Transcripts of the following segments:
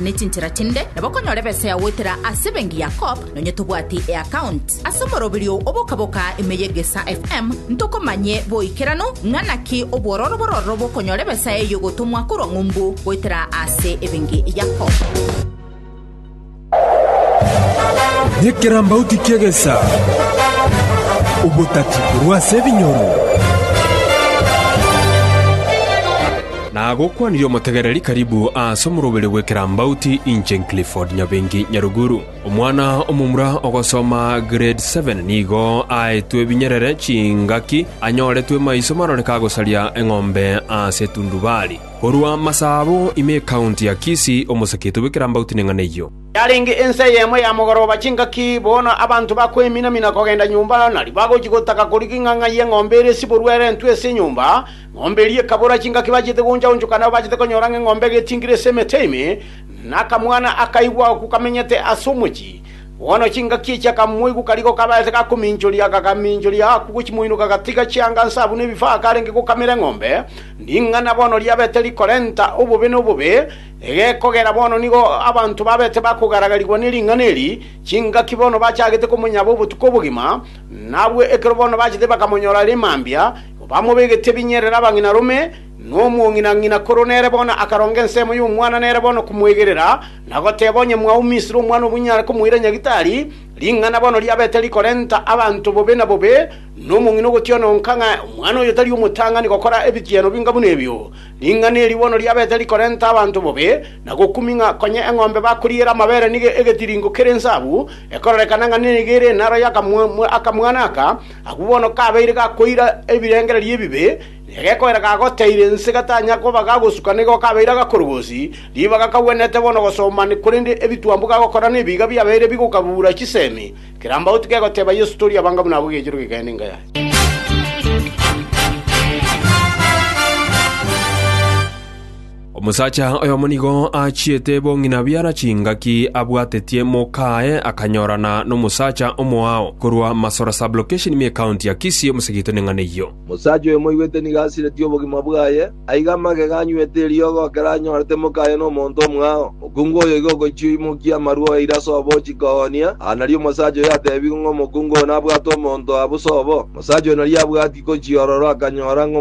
ne chinchera chinde, nabo okonyora ebesa yagoetera ase benki ya Co-op, nonye tobwati eaccount. Ase omoroberio o boka-boka ime ye Gesa FM, ntokomanye boikeranu ng'a naki obwororo bororo bw'okonyora ebesa eyio egotomwa korwa ng'umbu goetera ase ebenki ya Co-op. Ekerambauti ki'egesa. Obotati korwa ase ebinyoro. Nagokwanire omotegereri karibu ase omoroberi bw'ekerambauti inche Clifford Nyabengi Nyaruguru. Omwana omomura ogosoma grade seven nigo aetwe ebinyerere chingaki anyoretwe maiso maroreke agosaria eng'ombe ase etundubari. Korwa Masabo ime ecounty ya Kisii omosakiete bw'ekerambauti neng'ana eyio. Yarenge ensa eyemo ya mogoroba chingaki, bono abanto bakoemina-mina kogenda nyomba, na ribagochi gotaka korigia ing'ang'a y'eng'ombe ere siborwa erentwe ase enyomba, Ng'ombe eria ekabora chingaki bachete gooncha-onchoka, nabo bachete konyora ng'a eng'ombe egetingire ase emete ime, na akamwana akaigwa agwo kamenyete ase omochie. Bono chingaki echio akamoigwa karigo kabaete gakominchoria, akagaminchoria agakwa gochimoinoka, agatiga chianga nsa buna ebifaa akarenge gokamera eng'ombe. Ring'ana bono riabete rikorenta obobe na obobe, egekogera bono nigo abanto babete bakogaragarigwa ne ring'ana eri, chingaki bono bachagete komonyaba obotuko obogima, na abwo ekero bono bachete bakamonyora are mambia, Bamobegetie ebinyerero abang'inarome, na omong'ina-ng'ina korwa nere bono akaronga ensemo y'omwana nere bono komoegerera, na goteba, Onye mwao Misiri omwana obunyare komoira nyagitari, ring'ana bono riabete rikorenta abanto bobe na bobe, na omong'ina ogotiona onka ng'a omwana oyo tari omotang'ani gokora ebigiano binga buna ebio. Ring'ana eri bono riabete rikorenta abanto bobe, na gokumi ng'a konya eng'ombe bakoriera amabere nigo egetiringo kere ensabu, ekororekana ng'a nigo ere enaro y'akamwana aka. Agwo bono kabeire gakoira ebirengererio ebibe, na egekoera gagoteire ense gatanya koba gagosuka nigo kabeire agakorogosi, ribaga kagwenerete bono gosomani, korende ebitwambu gagokora nebiiga biabeire bigokagura chisemi, kerambauti kegoteba Yeso tori abanga buna abwo egechero kegende inga yaye. Omosacha oyomo nigo aachiete bong'ina biara chingaki abwatetie mokaaye akanyorana nomosacha omoao korwa Masora Sub-location ime County ya Kisii omosegete neng'ana eyio. Omosacha oyo moigwete nigo asiretie obogima bwaye, aiga amagega anywete eriogo ekero anyorete mokaaye nomonto omoao. Mokungu oyo igo ogochia oimokia amarwa oyaire ase obochiko oo onia. Aa nario omosacha oyo atebigwe ng'a omokungu oo nabwate omonto aa bosa obo. Omosacha oyo nario abwati gochiorora, akanyora ng'a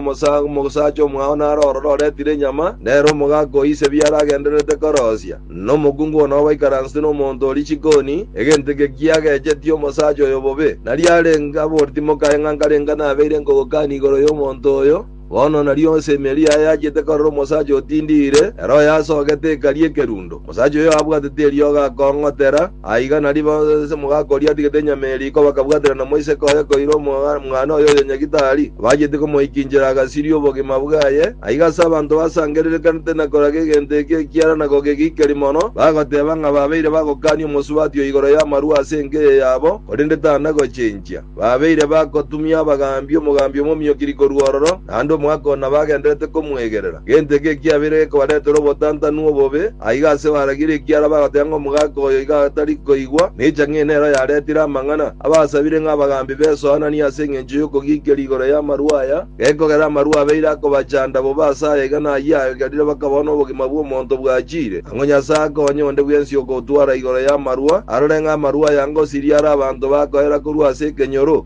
omosacha omwao nare ororo oretire enyama, nere omogaka o ise biaro agendererete korosia, na omokungu oo nao baikaransete nomonto o richikoni, egento eke kiagechetie omosacha oyo bobe. Nario arenge aboreti mokaye ng'a nkarenga nabeire nkogokani igoro y'omonto oyo. Bono nario ase emeeri eye ayachete karoro omosacha otindiire, ere oyasogete ekari ekerundo. Omosacha oyo abwatete eriogo akong'otera, aiga nario bonsi omogaka oria atigete enyama eye riko bakabwatera na moiseke oye koira omwana oye oyonyegite aria, abachete komoikinchera agasiria obogima bwaye. Aiga ase abanto basangererekanete na koraga egento eke ekiara na kogegikeri mono, bagoteeba ng'a babeire bagokania omosubati oo igoro y'amarua ase enka eye yabo, korende tana gochenchia. Babeire bagotumia abagaambi, omogaambi omomio-kiri korwa ororo, naende omwaka oo nabagenderete komwegerera. Gento eke ekiabeire gekobaretera obotantanu obobe, aiga ase baragirie ekiara bagoteba ng'a omogaka oyo iga atari koigwa, na echa ng'ina nero yaretire amang'ana. Abasabire ng'a abagaambi besoananie ase engencho y'okogikeria igoro y'amarwa aya. Gekogera amarua abeire akobachanda bobe ase aya iga nayio aegerire bakabao nobogima bw'omonto bwachiire, ang'o Nyasae akonye onde bwensi okotwara igoro y'amarua, arore ng'a amarua aya ngosiria are abanto bakoera korwa ase ekenyoro?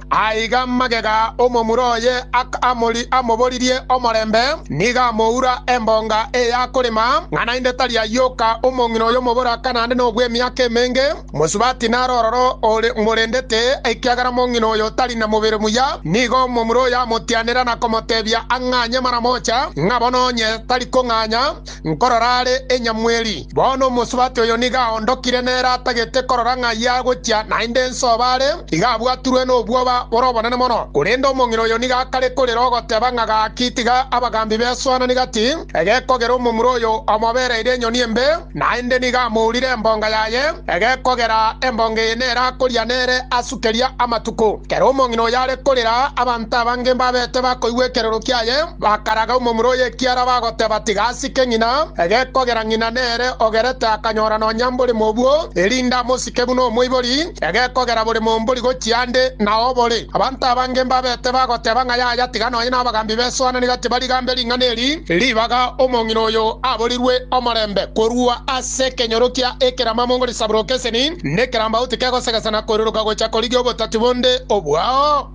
Aiga magega omomura oye aka amori amoboririe omorembe, nigo amoura embonga eya korema, ng'a naende tari ayoka omong'ina oyo omoboraka naende nobw'emiaka emenge, mosubati naro ororo ore morendete, ekiagera mong'ina oyo tari na mobere muya. Nigo omomura oyo amotianera na komotebia ang'anye mara mocha, ng'a bono onye tari kong'anya, Nkorora are enyamweri. Bono omosubati oyo nigo aondokire nere atagete korora ng'a ayio agochia, naende ense oba are, iga abwaturwe nobwoba bore obonene mono. Korende omong'ina oyo nigo akare korera ogoteba ng'a gaki tiga abagambi besoanani gati, egekogera omomura oyo omobereire enyoni embe, naende nigo amourire embonga yaye, egekogera embonga eye nere akoria nere asu keria amatuko. Kera omong'ina oyo are korera, abanto abange mbabete bakoigwa ekerero kiaye. Bakaraga omomura o yekiara bagoteba, Tiga asike ng'ina, egekogera ng'ina nere ogerete akanyora nonya mbore mobwo, erinde amosike buna omoibori, egekogera bore mombori gochia ande na obore. Abanto abange mbabete bagoteba ng'a yaya tiga nonya nabagambi besoananire tibarigambe ring'ana eri ribaga omong'ina oyo aborirwe omorembe korua ase ekenyoro kia ekeramamo ngori saburokeseni nekerambau tikegosegesana koiruruka gocha korigia obotati bonde obwao.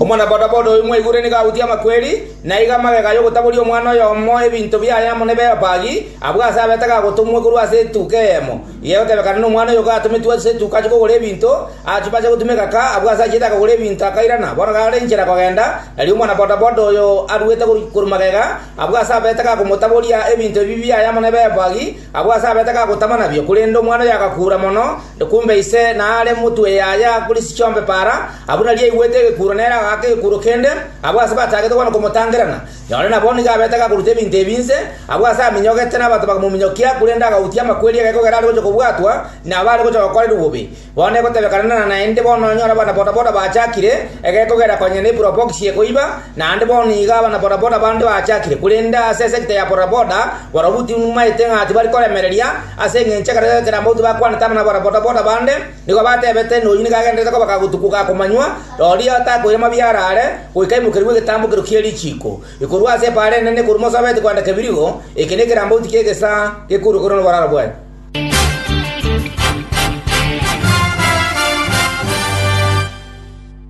Omwanabodaboda oyo mwaigure nigo agutire amakweri, na aiga amagega y'ogotaboria omwana oyomo ebinto biaye amo ne Beopagi, abwo ase abete gagotomwa korwa ase etuka eyemo, egotebekana nomwana oyo gatometwe ase etuka achie kogora ebinto. Achia bacha gotuma egaka, abwo ase achiete akagora ebinto akairana. Bono gare inchera kogenda, erio omwanabodaboda oyo aruete korwa magega, abwo ase abete gakomotaboria ebinto ebi biaye amo ne Beopagi, Abwo ase abete gagotama nabio, korende omwana oyo agakuura mono, na kumbe ise naare motwe yaye akorisia chiombe para. Abwo nario aigwete egekuuro nere agaaka egekuuro kende, abwo ase batagete bono komotangerana. Nonye nabo nigo abete gakoruta ebinto ebi inse, abwo ase aminyogete nabato bakamominyokia, korende agautia amakweri aye kogera are gocha kobwatwa nabare gocha gokorerwa bobe. Bono egotebekananana naende bono nonyore abana-bodaboda bachakire, ege kogera konya ne probox ye koiba, naende bono iga abana-bodaboda bande bachakire, korende ase esecta ya bodaboda, barobwo timaete ng'a tibari koremereria, ase engencho ekero ekerambe gotyo bakwanete abana abana-bodaboda bande, nigo batebete ng'a oyio nigo agendererete kobaka gotuko ga komanywa, rorio atakoire mabia arare, goika aimokerigwe egetambo kerio kie richiiko, ekorwa ase epaara enene ekorwa mosobeti kwenda kebirigo, eke nekerambe gotyo ki'egesaa gekourwa korwa noboraro bwaye.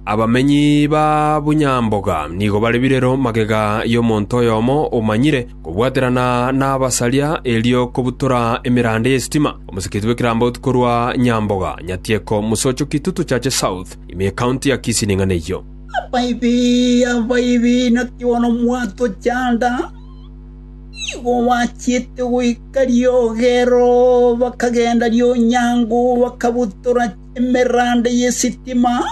Abamenyi ba Bunyamboga nigo bare birero magega y'omonto oyomo omanyire kobwaterana n'abasaria erio kobutora emeranda y'esitima, omosikiti bw'ekerambaotu korwa Nyamboga, Nyatieko, Musocho, Kitutu, Chache South, ime y'Ecounty ya Kisii ning'ana eyio. Abaibi, abaibi, naki bono mwatochanda, nigo bachiete goika. Riogero bakagenda rionyango, bakabutora emeranda y'esitima.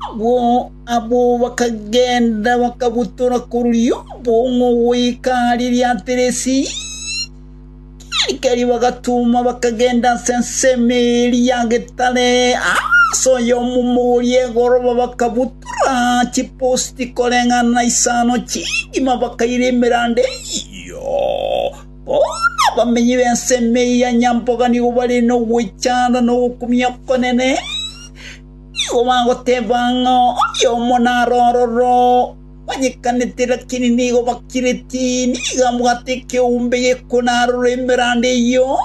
Agwo abwo bakagenda bakabutora koruria obong'u goika riria Tirisi. Keri keri bagatuma bakagenda ase ensemo eria getare, ase oyomomo oria egoroba bakabutora chiposti koreng'ana na isano chingima bakaira emeranda eyio. Bono abamenyi b'ensemo eyio ya nyamboga nigo bare nogwechanda na ogokumia okonene, nigo bagoteba ng'a oyomo naro ororo onyekanete, lakini nigo bakireti, nigo abwate ekeumbe gekuna aroro emeranda eyio,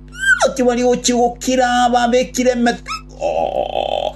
bono tibari gochia gokira, babekire emetego.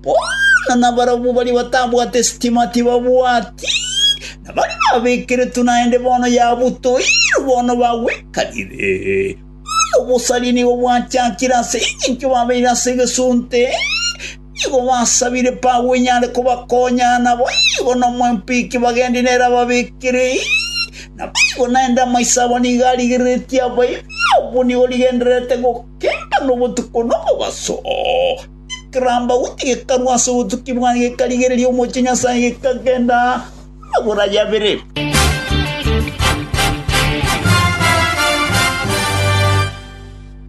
Bono nabarabwo baria batabwate sitima tibabwati, na baria babekeretwe naende bono yabutoirwe, bono bagwekanire. Bono obosaria nigo bwachakire ase engencho babeire ase egesunte, nigo basabire Paulo enyare kobakonya, nabo nigo nomwempiki bagendia nere ababekere. Naboigo naende amaiso abo nigo arigereretie abaibere, obwo nigo rigendererete gokemba nobotuko nomobaso. Ekerambauti gekarwa ase obotuki bwaye, gekarigereria omochie Nyasae, gekagenda amagoro aye abere.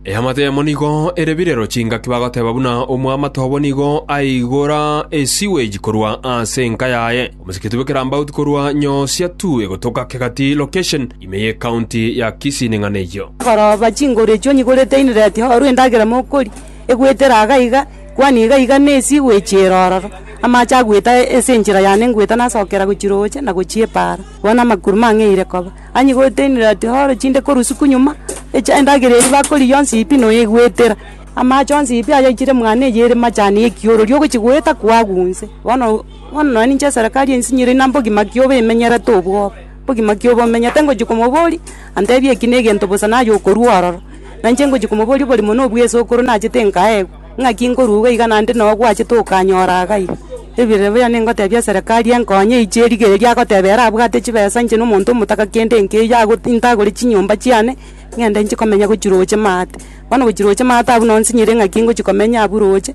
Eamate yamo nigo ere birero chingaki bagoteba buna omoamate obo nigo aigora esiweji korwa ase enka yaye. Omosikiti bw'ekerambauti korwa Nyosia Tue gotoka Kegati Location ime ye County ya Kisii ning'ana eyio. Koroba chinguru echio onyigurete inireti orwe endagera mokoria. egwetera iga iga, kwani iga iga nesi igwechiera ororo. Amache agweta ase enchera yane ngweta nasokera gochia roche na gochia epaara, bono amakuru mang'eire koba. Onye gotenire ati horo chinde korwa isiko nyuma, echa endagera eria bakorigia yonsi pi noyegwetera. Amache onsi pi ayaichire mwane eye ere machani ekiorori ogochi goeta koagwo inse. Bono, bono nonya ninche eserekari ensinyire inambogi maki obe emenyerete obwoba. Ogima kia obomenyo, tengochia komoboria, antebie eki negento bosa naye okorua ororo. Nainche ngochia komoboria oborimo na obwesokoro nachete nkaegwa, ng'aki nkorwa iga iga naende noo gwachete okanyora iga iga. Ebiira buna ningotebia eserekari enkonye eiche erigereria agoteba ere abwate chibesa inche na omonto omotaka kende nkeiyo ago ntagore chinyomba chiane, ng'ende inche komenya gochia roche maate. Bono gochia roche maate abwo noo nsinyire ng'aki ngochia komenya abwo roche.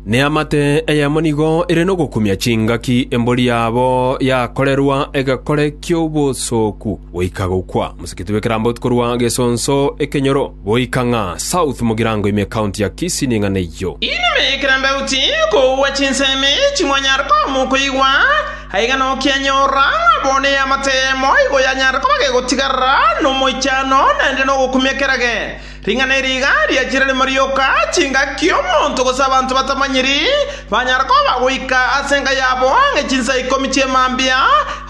Neamate eyemo nigo ere nogokumia chingaki embori yabo yakorerwa egekore ki'obosooku goika gokwa, Mosikiti bw'Ekerambotu korwa Gesonso Ekenyoro goika ng'a South Mugirango ime County ya Kisii ning'ana eyio. Inwe ekerambeuti koua chinsemi chimwanyare koamwa okoigwa, aiga nokianyorora ng'a bo neamate eyemo igo yanyare koba gegotigarera nomoichano naende nogokumia kerage. Ring'ana eri iga riachire rimo rioka, chingaki omonto gose abanto batamanyiri banyare koba goika ase enka yabo ang'e chinsa ikomi chi'emambia,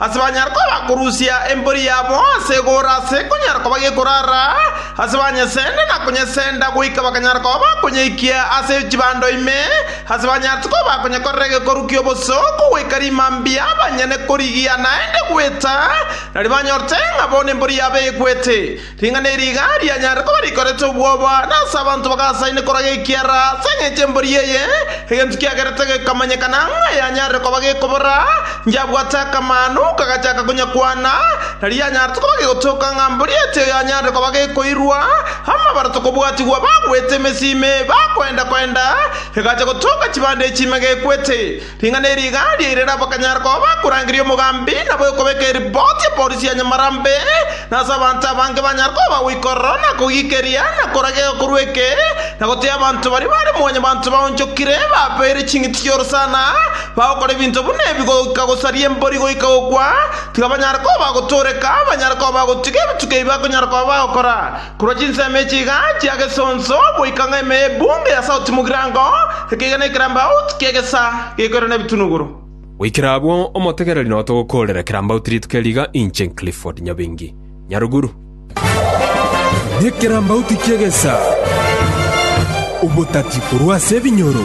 ase banyare koba korusia embori yabo ase egoora ase ekonyara koba gekorara, ase banyesende na konyesenda goika bakanyara koba bakonyeikia ase chibando ime, ase banyarete koba konyekorera egekoru ki'oboso kogoika rimambia banyene korigia naende gweta, na ribanyorete ng'a bono embori yabo egwete. Ring'ana eri iga rianyarire koba rikorete obwoba, na ase abanto bagasaine korwa gekiara ase engencho y'embori eye, egento kiagerete gekamanyekana ng'a yanyarire koba gekobora, Inchagwate akamanu, kagachaka konyakwana, na rianyarete koba gegotoka ng'a mbori eye tiyo yanyarire koba gekoirwa, amabaroto kobwatigwa bagwete emesimi, bakoenda-koenda, egacha gotoka chibande echi ime gekwete. Ring'ana eri igaaria ire nabo bakanyara koba bakorangeria omogambi na bwekobeka eripoti ya polisi ya nyamarambe, na ase abanto abange banyare koba bagoikorora na kogiikeria na korageka korwa eke na goteeba abanto baria bare mwanyabanto baonchokire babeire ching'iti chi'orosana bagokora ebinto buna ebi goika gosaria embori goika gokwa, tiga banyare koba bagotooreka, banyare koba bagotiga ebituko ebi bakonyara koba bagokora. Korwa chinsemo echi iga chia gesonso goika ng'a ime y'ebunge ya sauti mogirango, ekeiga ne ekerambauti ki'egesa gekoirana ebitunuguru. Goikera abwo, omotegereri noyo togokoorera ekerambauti rituko eri iga, inche Clifford Nyabengi, Nyaruguru. Nekerambauti ki'egesa, obotati korwa ase ebinyoro.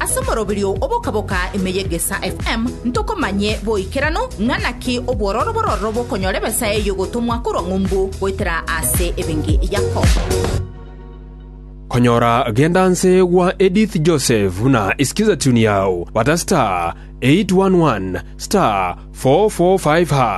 Ase omoroberio oboka-boka ime y'Egesaa FM ntokomanye boikeranu ng'a naki obwororo bororo bokonyora ebesa eye y'ogotomwa korwa ng'umbu goetera ase ebenki Yakobo. Konyora Genda Nse gwa Edith Joseph na Isikiza Tune Yao, bata star 811 star 445 hash.